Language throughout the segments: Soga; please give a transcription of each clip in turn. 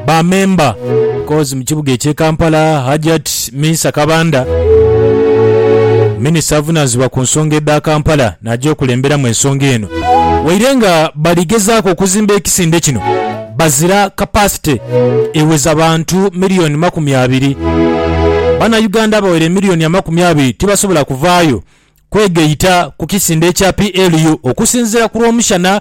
Ba memba Kozi mu kibuga ekye Kampala Hajjat Minsa Kabanda minister avunanizibwa ku nsonga edha Kampala naja okulemberamu ensonga eno waire nga bali gezaku okuzimba ekisinde kino bazira capacity eweza bantu million makumi abiri. Bana Uganda abawera emillion amakumi abiri tibasobola kuvayo kwegaita ku kisinde ekya PLU okusinzira ku lwomushana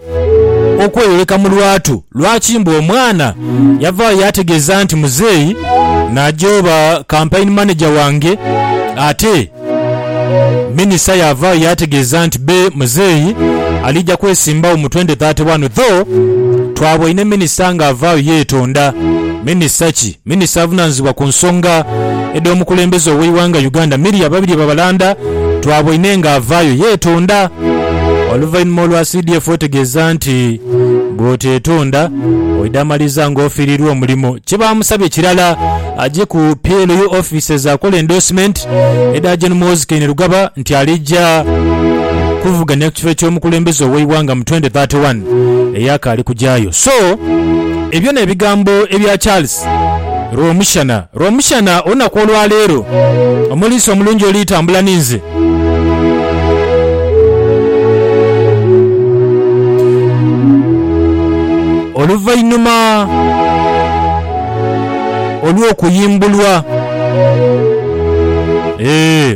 okweyoleka mu lwatu lwaki mbu omwana yavaayo yaategeeza nti muzeeyi Najo oba Kampaini Maneja wange ate Minisita yaavaayo yaategeeza nti bbe muzeeyi aliija kwesimbawo mu twende thate wanu tho twaboine Minisita ng'avaayo yeetonda. Minisita ki? Minisita avunanizibwa ku nsonga edh'omukulembeze ow'eighanga Uganda Miria Babirye Babalanda twaboine nga avaayo yeetonda oluvainhuma olwa CDF otegeeza nti bwoteetonda oidha maliza nga ofiirirwa omulimo. Kyebaamusabye kirala aje ku PLU offices akole endorsement edha Gen Muhoozi Kainerugaba nti alija kuvuganya ku kifo eky'omukulembeze ow'eighanga mu twenty thirty one eyakaali kujaayo. So. Ebyo n'ebigambo ebya Charles Rwomushana. Rwomushana olunaku olwa leero, omuliisa omulungi oli tambula ninze. Oluvainhuma olw'okuyimbulwa.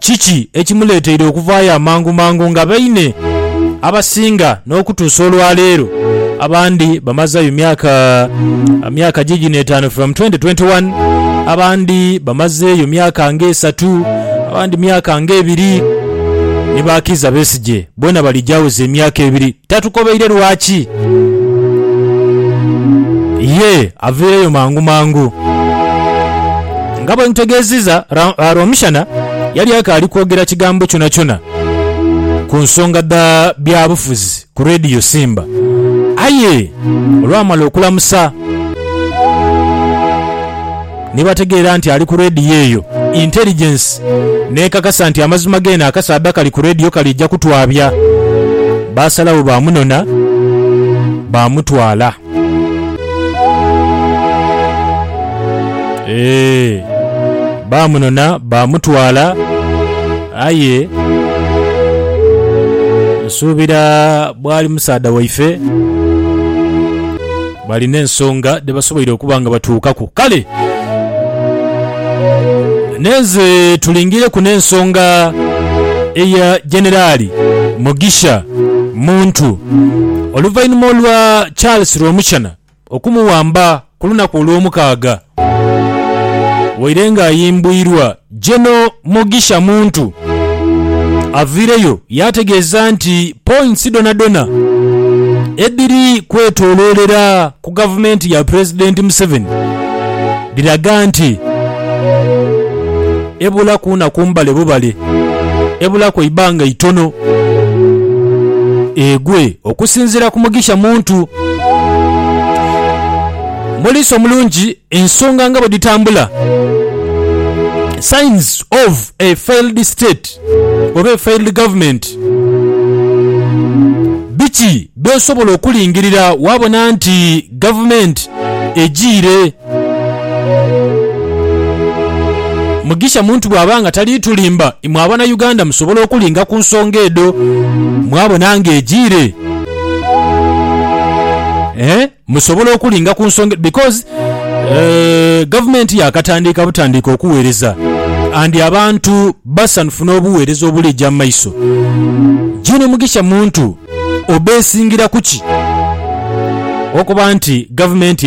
Kiki ekimuleeteire okuvaayo amangumangu nga baine abasinga n'okutuusa olwaleero? Abandi bamazaayo myaka myaka giigino etaanu from 2021, abandi bamazeeyo myaka ng'esatu, abandi myaka ng'ebiri ni ba Kiiza Besigye. Boona balija aweza emyaka ebiri. Tatukobeire lwaki. Yee, aviireyo mangu mangu. Nga bwe nkutegeeziza, Ra, Rwomushana yali akaali kwogera kigambo kyonakyona ku nsonga dha byabufuzi ku Radio Simba. Aye olwamala okulamusa. Ni bategeera nti ali ku radio eyo, intelligence n'ekakasa nti amazima g'eno akasaadha kali ku radio kaliija kutwabya. Baasalagho baamunona, baamutwala. Eeh, baamunona, baamutwala. Aye nsuubira bwali musaadha waife. Balina ensonga dhe basoboire okuba nga batuukaku. Kale nenze tulingireku n'ensonga eya Generali Mugisha Muntu oluvainhuma olwa Charles Rwomushana okumuwamba ku lunaku Olwomukaaga waire nga ayimbwirwa Jeno Mugisha Muntu avaireyo yaategeeza nti points dhonadhona edhiri kwetoloolera ku gavumenti ya Pulezidenti Museveni dhiraga nti ebulaku naku mbale bubale, ebulaku eibanga itono egwe. Okusinziira ku Mugisha Muntu, Muliisa omulungi Ensonga nga bwe dhitambula, Signs of a failed state oba a failed government, Biki by'osobola okulingirira waabona nti gavumenti ejiire? Mugisha Muntu bw'aba nga tali tulimba, imwe Abanauganda musobola okulinga ku nsonga edho mwabona ng'ejiire? Musobola okulinga ku nsonga because eh, gavumenti yaakatandiika butandiika okuweereza and abantu basanhufu n'obuweereza obuli eja mu maiso. June Mugisha Muntu obeesingira ku ki okuba nti gavumenti